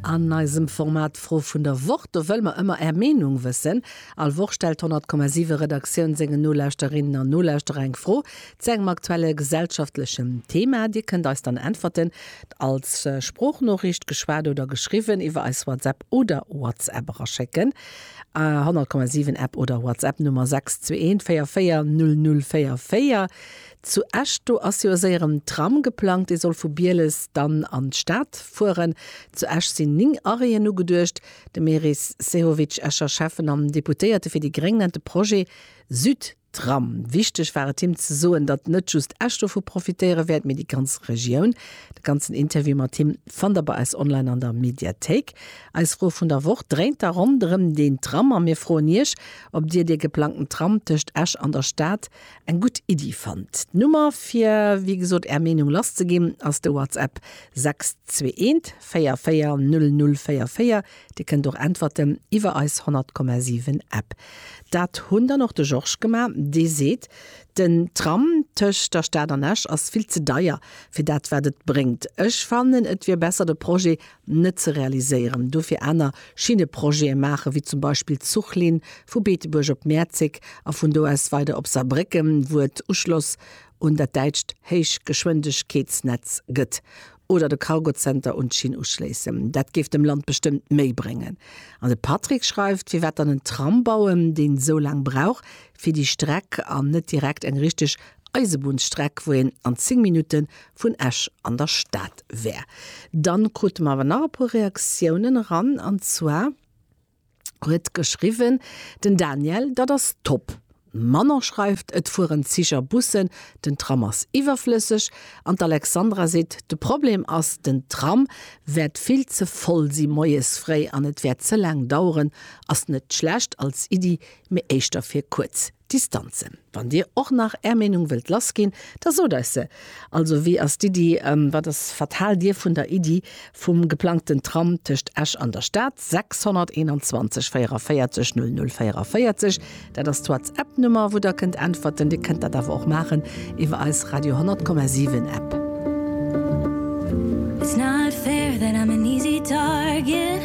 An eisem Format d'Fro vun der Woch, do wëlle mer ëmmer Är Meenung wëssen. All Woch stellt d'100,7 Redaktioun sengen Nolauschterinnen an Nolauschterer eng Fro zu engem aktuelle gesellschaftlechen Thema. Dir kënnt eis dann Äntwerten als Sproochnoriicht, geschwat oder geschriwwen, iwwer eis WhatsApp oder WhatsApp eraschécken. 100,7 App oder WhatsApp Nummer 621 44 00 44. Zu Esch, do ass jo séier en Tram geplangt, dee soll vu Bieles dann an d'Stad fueren. Zu Esch sinn 9 Arrêten ugeduecht. De Meris Sehovic, Escher Schäffen an Deputéierte fir déi Gréng, nennt de Projet Südtram. Wichteg war et him ze soen, datt net just Esch dovu profitéiere wäert, mee déi ganz Regioun. De ganzen Interview mat him fannt der bei eis online an der Mediathéik. Eis Fro vun der Woch dréint da ronderëm deen Tram a mir froen Iech, ob Dir dee geplangten Tram tëscht Esch an der Stad Eng gutt Iddi fannt. D'Nummer fir wéi gesot är Meenung lass ze ginn ass de WhatsApp 621440044. Dir kënnt och äntwerten iwwer eis 100,7 App. Dat hunn dann och de Georges gemaach. Dee seet, den Tram tëscht der Stad an Esch ass vill ze deier fir dat wat et bréngt. Ech fannen et wier besser de Projet net ze realiséieren, dofir aner Schinneprojete maachen, wéi zum Beispill d'Zuchlinn vu Beetebuerg op Mäerzeg a vun do aus weider op Saarbrécken, wou et Uschloss un dat däitscht Héichgeschwindegkeetsnetz gëtt, oder de Cargozenter un d'Schinn uschléissen. Dat géif dem Land bestëmmt méi bréngen. An de Patrick schreift, Firwat dann en Tram bauen, deen esou laang brauch fir déi Streck, an net direkt eng richteg Eisebunnsstreck, wou een an 10 Minutte vun Esch an der Stad wär. Dann krute mer awer nach e puer Reaktiounen eran an zwar huet geschriwwen den Daniel, Dat ass top! D'Manon schreift, Et fueren Zich a Bussen, den Tram ass iwwerflësseg an d'Alexandra seet, De Problem ass, den Tram wäert vill ze voll si moies fréi an et wäert ze laang daueren. Ass net schlecht als Iddi, mee éischter fir kuerz Distanzen. Wann dir och nach är Meenung wëllt lass ginn, da sot eis se. Also wéi ass d'Iddi, wat ass, wat haalt dir vun der Iddi vum geplangten Tram tëscht Esch an der Stad? 621 44 00 44, dat ass d'Whatsapp-Nummer, wou der kënnt äntwerten. Dir kënnt dat awer och maachen iwwer eis Radio 10,7 App. It's not fair that I'm an easy target.